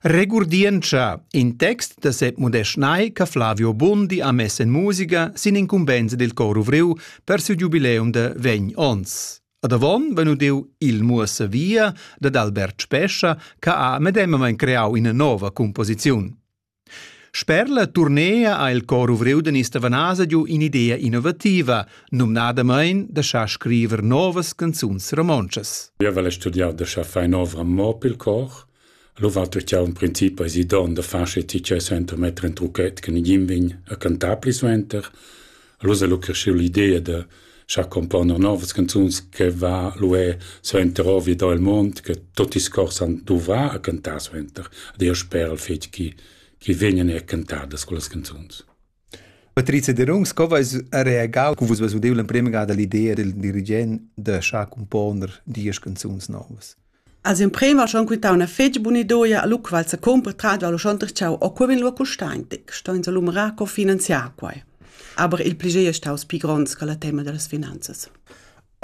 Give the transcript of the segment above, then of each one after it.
Regurdientscha in text da Sep Modest Nay che Flavio Bondi ha mess en musica sin incumbensa dil cor ovriu per siu giubileum da vegn onns. Ad avon vegn udiu Il muossa via dad Albert Spescha che ha medemmamein creau ina nova composiziun. Sper la turnea ha il cor ovriu da Nista Vanasa giu in'idea innovativa, numnadamain da schar scriver novas canzuns romontschas. Jeu vel studiar da schar far in'ovra mo pil cor. Allora vet jau in princip eisi don da far sche ti tgei suenter metter in trucchet che nigin vegn a cantar pli suenter. Allura lu creschiu l'idea da schar componer novas canzuns che va lu è suenter ovia da il mond, che tutti scorsan duva a cantar suenter. Ed io sper al fetg chi chi vegnan er cantadas quellas canzuns. Patrizia Derungs, co vais a reagau cu vus vus udeu l'emprema gada l'idea del dirigent da schar componer diesch canzuns novas? As emprema ha schon quintau üna fetg buna idoia, alura qual s'ha cumpratto alura schon darcheu o cur vegn lura custaintic, sto ins alumerar co finanziar quai. Aber il plager è staus pli gronds che la tema dallas finanzas.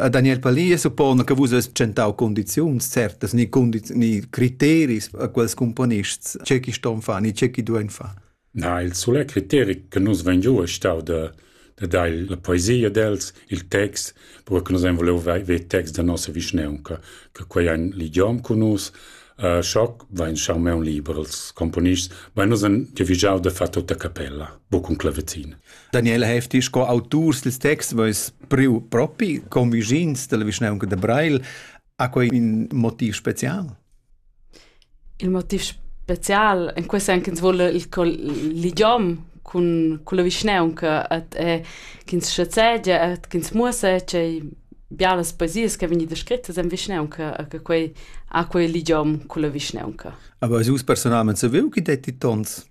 Daniel Pally suppona che vus hast tschentau condiziuns certas ni, condiz- ni criteris a quels cumponists, ce chi ston far ni ce chi duein far. Na, il sulet criteri che nus vein giu ei stau da da dar la poesia d'els, il text, cura che nus ein vuliu ver ver texts da nossa vischnaunca, che quei ein l'idiom cun nus. Uh, schoc vain schau meun liber als componists, ma nus han giavigiau da far tutta capella, buc cun clavizin. Daniele Hefti, sco auturs dils texts, veis priu propi convigins dalla vischnaunca da Breil Ha quei in motiv special? Il motiv special in quei sen ch'ins vole il ligiom cun con la vischnaunca et e ch'ins schazegia et ch'ins muossa tgei bialas poesias che vegni descrittas en vischnaunca e che quei ha quei ligiom con la vischnaunca. Aber also personalmente saviu chi detti tons?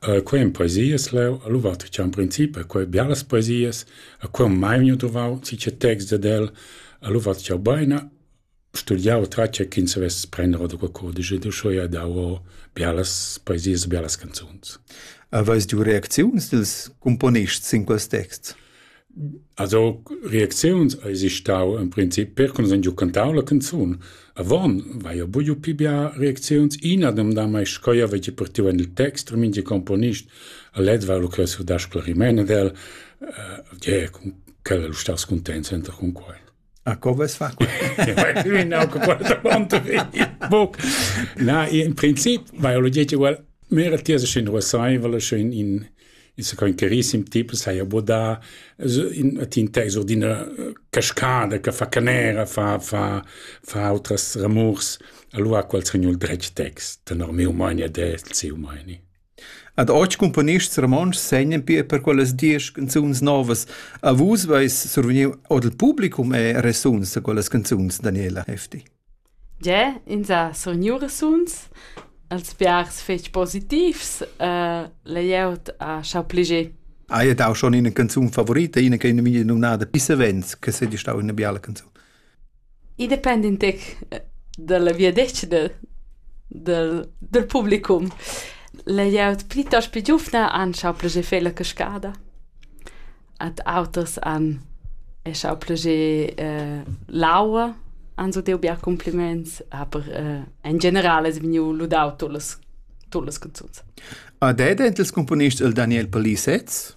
Quei ein poesias leu, allura tschan in princip a quei bialas poesias, a quei ho mai miu duvau sicher texts dad el, allura tschau beina, studiau tratga ch'ins savess prender ora da cudisch ed uschè ha dau ora bialas poesias, bialas canzuns. Aveis giu reacziuns dils cumponists sin quels texts? Als aug reacziuns eisi stau en princip percuns han giu cantau la canzun. Avon vaia buiu pli bia reacziuns. Ina demda mai sch'jeu veggi partiu en il text e mintga componist ha led var lu ch'jeu surdar sclariment ad el. Eh, yeah, quella lu staus cuntents enta cun quei. A co ves fa? Na, in princip vai olo diete well mera tiesa schin ruasaivala schin in il sa coin carissim tipo sai abodà in tin teso d'ina cascada che fa canera fa fa fa outras ramurs allora qual sogn il dretg text tenor meu mania del seu mania Ad otg cumponists romontschs segnan pia per quellas diesch canzuns novas. A vus veis survegniu ord il publicum e resuns a quellas canzuns, Daniela Hefti. Ge, ins ha survegniu resuns. Els biars fetg positivs. Uh, layout ha schau pliger. Hai dau schon ina canzun favorita, ina che ina mia numnada Pissavens, che sei stau ina biala canzun. I depend in tec dalla viadetgna dal dal publicum. La glieud plitost pli giuvna han schau plascher fer la cascada. Ad auters han ei schau plascher l'aua, han so deu bia cumpliments, aber in general es vegniu ludau tut las tut las canzuns. A dad els componist el Daniel Palissetz?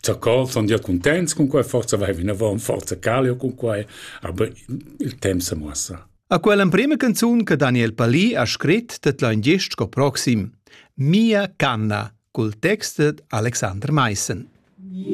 Zacò sun gia cuntents cun quai, forsa vai vinavant, forsa calio cun quai, aber il temp sa muossa. A quell'emprema canzun che Daniel Palì ha scrit tet lain gest sco proxim. Mia canna cul text d'Alexander Meissen. Yeah.